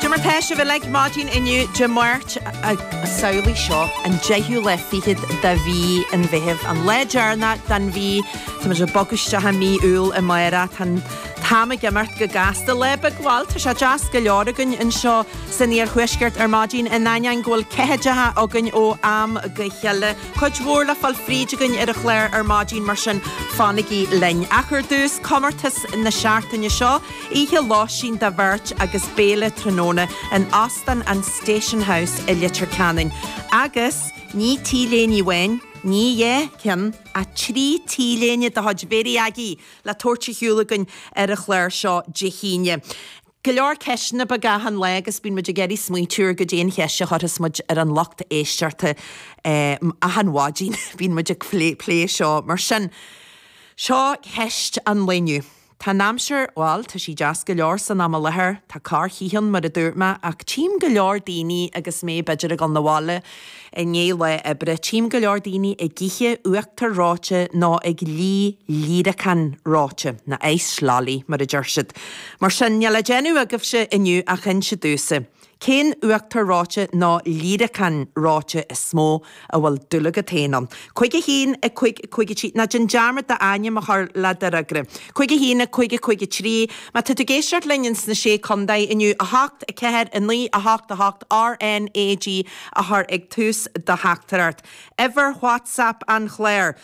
Cad é mar tá sibh uilig maidin inniu Dé Máirt samhlaigh seo, an deichiú lá fichead de mhí an Mheithimh, an lá deireanach den mhí. Tá muid ag bogadh isteach i mí Iúil amárach. Tá an t-am ag imeacht go gasta. Lá beag, bhuel, tá sé deas go leor againn anseo san iarthuaisceart ar maidin in ainneoin go bhfuil ceathaideacha againn ó am go chéile. Cuid mhór le fáil fríd againn ar an chlár ar maidin mar sin fanaigí linn. Ach ar dtús, comórtas na seachtaine seo. Oíche lóistín do bheirt agus béile tráthnóna in Óstán an Station House i Leitir Ceanainn. Agus ní t-léine amháin, ní dhá cheann, ach trí t-léine de chuid Mhary Aggie le tabhairt ar shiúl againn ar an chlár seo Dé hAoine. Go leor ceisteanna beaga achan lá agus bíonn muid ag iarraidh smaointiú ar cad é an cheist a chuirfeas muid ar an lucht éisteachta achan mhaidin. Bíonn muid ag plé seo. Mar sin, seo ceist an lae inniu. Tá an aimsir, bhuel, tá sí deas go leor san am i láthair. Tá corrchith ann, mar a dúirt mé, ach tchím go leor daoine agus mé b'fhéidir ag dhul 'na bhaile i ndiaidh lá oibre, tchím go leor daoine ag ithe uachtar reoite nó ag lí líreacán reoite, na ice lolly, mar a deir siad. Mar sin, níl le déanamh agaibhse inniu ach inse damhsa. Cén uachtar reoite nó líreacán reoite is mó a bhfuil dúil agat féin ann? Cúig a haon, a cúig, a cúig a trí, ná déan dearmad d'ainm a chur le d'fhreagra. Cúig a haon, a cúig, a cúig a trí, Má tá tú ag éisteacht linn ins na Sé Contae inniu, a hocht, a ceathair, a naoi, a hocht, a hocht, RNAG a chur ag tús do theachtaireacht. Uimhir Whatsapp an chláir.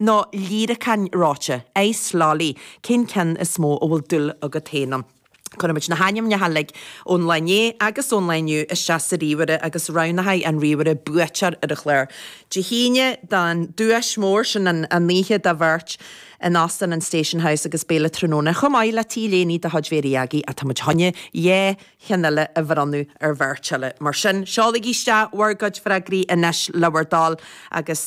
nó líreacán reoite, ice lolly, cén ceann is mó a bhfuil dúil agat féin ann? Cuirfidh muid na hainmneacha uilig ón lá inné agus ón lá inniu isteach sa ríomhaire agus roghnóidh an ríomhaire buaiteoir ar an chlár Dé hAoine don duais mhór, sin an oíche do bheirt in Óstán an Station House agus béile tráthnóna chomh maith le t-léine de chuid Mhary Aggie ach tá muid chun dhá cheann eile a bhronnadh ar bheirt eile. Mar sin, seolaigí isteach bhur gcuid freagraí anois le bhur dtoil agus.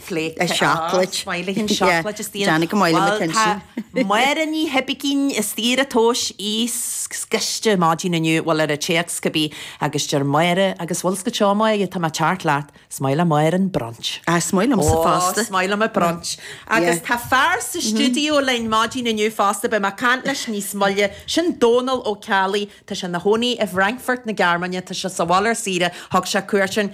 Plate of chocolate. Maith liom an chocolate is dian. Deannaigh go maith liom an ceann sin. Máire Ní hOibicín i saoire tomhais í scriste maidin inniu, bhuel ar an téacs cibé agus deir Máire agus bhfuil a fhios agat a Mháire tá mé ag teacht leat, 's maith le Máire an brunch. Ah 's maith liomsa fosta. Oh 's maith liom an brunch. Agus tá fear sa stiúideo linn maidin inniu fosta, beidh mé ag caint leis níos moille, sin Dónal Ó Ceallaigh, tá sé ina chónaí i bhFrankfurt na Gearmáine, tá sé sa bhaile ar saoire, thug sé cuairt orainn,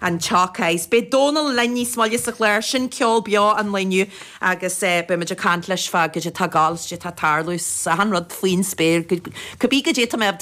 an tSeacais. Beidh Dónal linn níos moille sa chlár, sin ceol beo an lae inniu agus beidh muid ag caint leis fá cad é tá ag gabháil is cad é tá ag tarlú is achan rud faoin spéir, cibé cad é tá mé, tá.